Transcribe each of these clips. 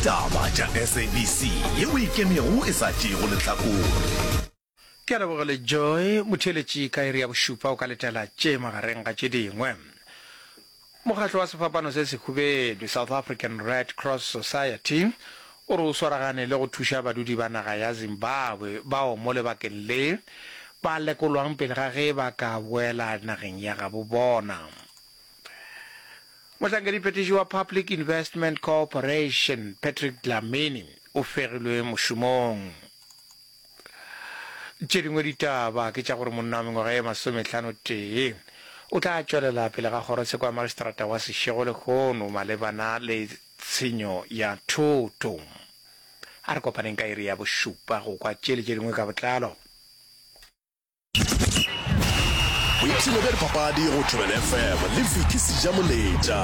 Taba tša SABC ye o ikemego e sa tšeego lehlakore. Ke a leboga le Joy Motheeletši ka iri ya bošupa o ka letela tše magareng ga tše dingwe. Mokgatlo wa sefapano se sehubedu South African Red Cross Society o re o swaragane le go thuša badudi ba naga ya Zimbabwe bao mo lebakeng le ba lekolwang pele ga ge ba ka boela nageng ya gabo bona. Mohlankediphethiši wa Public Investment Corporation, Patrick Dlamini, o fegilwe mošomong. Tše dingwe ditaba ke tša gore monna wa mengwaga ye masometlhano tee o tla tšwelela pele ga kgorotsheko ya magistrata wa Seshego lehono malebana le tshenyo ya thoto. A re kopaneng ka iri ya bošupa go kwa tše le tše dingwe ka botlalo. boipshino bja dipapadi go thobela fm le viki seja moletša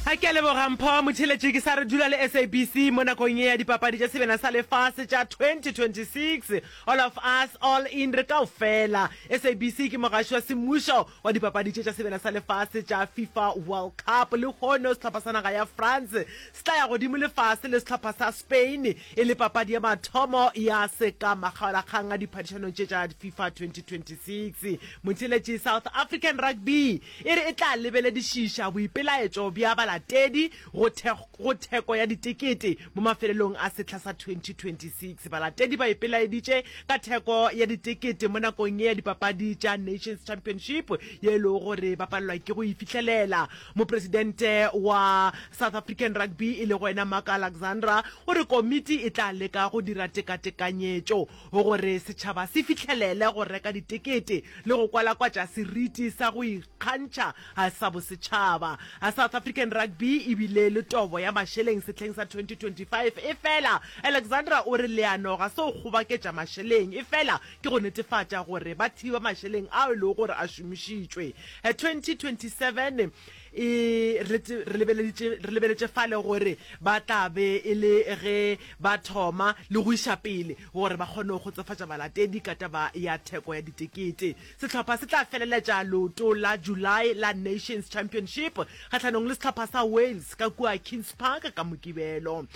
a ke a leboga mpho motheletše ke sa re dula le sabc mo nakong e ya dipapadi tša sebena sa lefase tša 2026 all of us all in re kao fela sabc ke mogaši wa semmušo wa dipapadi tše tša sebena sa lefase tša fifa world cup le kgono sehlopha sa naga ya france se tla ya godimo lefase le sehlopha sa Spain e le papadi ya mathomo ya se ka makgaolakgang a diphadišanong tše tša FIFA 2026. Motšheletši South African Rugby e re e tla lebeledišiša boipelaetšo bja balatedi go go theko ya ditekete mo mafelelong a sehla sa 2026. Balatedi ba ipelaeditše ka theko ya ditekete mo nakong ye ya dipapadi tša Nations Championship ye e lego gore ba palelwa ke go e fihlelela Mopresidente wa South African Rugby e lego ena Mark Alexandra o re komiti e tla leka go dira tekatekanyetšo gore setšhaba se fihlelele go reka ditekete le go kwalakwatša seriti sa go ikgantšha sa bosetšhaba. South African Rugby e bile le tobo ya mašeleng sehleng sa 2025 efela Alexandra o re leano ga se go kgobaketša mašeleng efela ke go netefatša gore ba thiba mašeleng ao e lego gore a šomišitšwe. 2027 e re lebeletše fale gore ba tla be e le ge ba thoma le go iša pele gore ba kgone go kgotsofatša balatedi ka taba ya theko ya ditekete. Sehlopha se tla feleletša leoto la July la Nations Championship kgahlanong le sehlopha sa Wales ka kua Kings Park ka Mokibelo.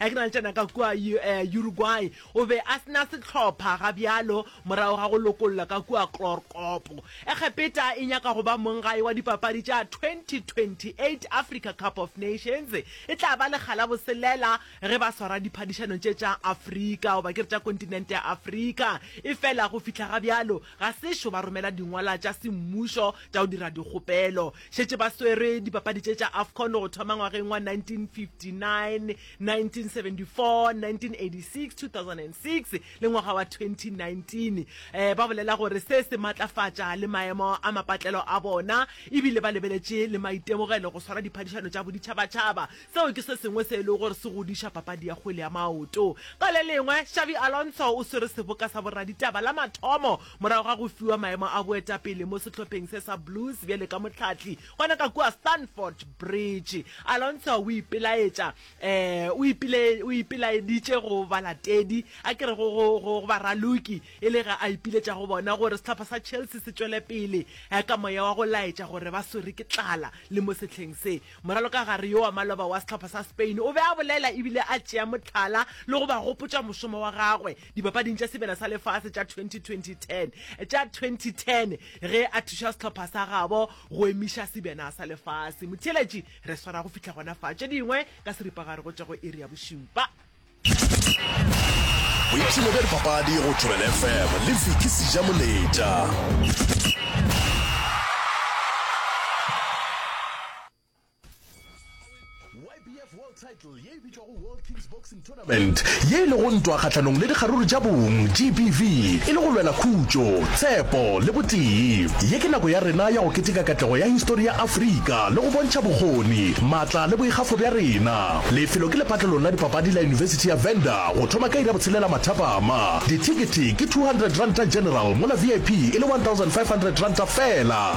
Ge ke na le tšena ka kua Uruguay, o be a se na sehlopha ga bjalo morago ga go lokollwa ka kua Chlorkopo. Egepeta e nyaka go ba monggae wa dipapadi tša 2028 Africa Cup of Nations. E tla ba lekga la boselela ge ba swara diphadišano tše tša Afrika, goba ke re tša kontinente ya Afrika. Efela go fihla ga bjalo ga se šo ba romela dingwalwa tša semmušo tša go dira dikgopelo. šetše ba swere dipapadi tše tša afcon go thoma ngwageng wa 1959 1974 1986 2006 le ngwaga wa 2019 um eh, ba bolela gore se se matlafatša le maemo a mapatlelo a bona ebile ba lebeletše le maitemogelo go swara diphadišano tša boditšhabatšhaba seo ke se sengwe se e lego gore se godiša papadi ya kgwele ya maoto ka le lengwe xavi alonso o swere seboka sa boraditaba la mathomo Morago ga go fiwa maemo a boetapele mo sehlopheng se sa Blues bjale ka mohlahli, gona ka kua Stamford Bridge, Alonso o ipelaetša, um, o ipile, o ipelaeditše go balatedi, a ke re go, go, go, go baraloki, e le ge a ipiletša go bona gore sehlopha sa Chelsea se tšwele pele, um, ka moya wa go laetša gore ba swerwe ke tlala le mo sehleng se. Moralokagare yo wa maloba wa sehlopha sa Spain o be a bolela e bile a tšea mohlala le go ba gopotša mošomo wa gagwe. dipapading tša sebele sa lefase tša 2020 tša 2010 ge a thuša sehlopha sa gabo go emiša sebena sa lefase motheeletši re swara go fihla gona fa tše dingwe ka seripagare go tšwa go iri ya bošupa boipshino bja dipapadi go tšwela lefm le viki seja moletša ye e lego ntwa kgahlanong le dikgaruru tša bong, GBV, e le go lwela khutšo, tshepo le botee. Ye ke nako ya rena ya go keteka katlego ya histori ya Afrika le go bontšha bokgoni, matla le boikgafo bja rena. Lefelo ke lepatlelong la dipapadi la Yunibesithi ya Venda go thoma ka iri ya botshelela mathapama. Dithekete ke R200 general mola VIP e le R1,500 feela.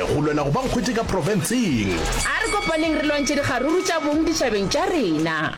Go lwela go ba nkgwete ka profenseng. A re kopaneng re lwantšhe dikgaruru tša bong ditšhabeng tša rena.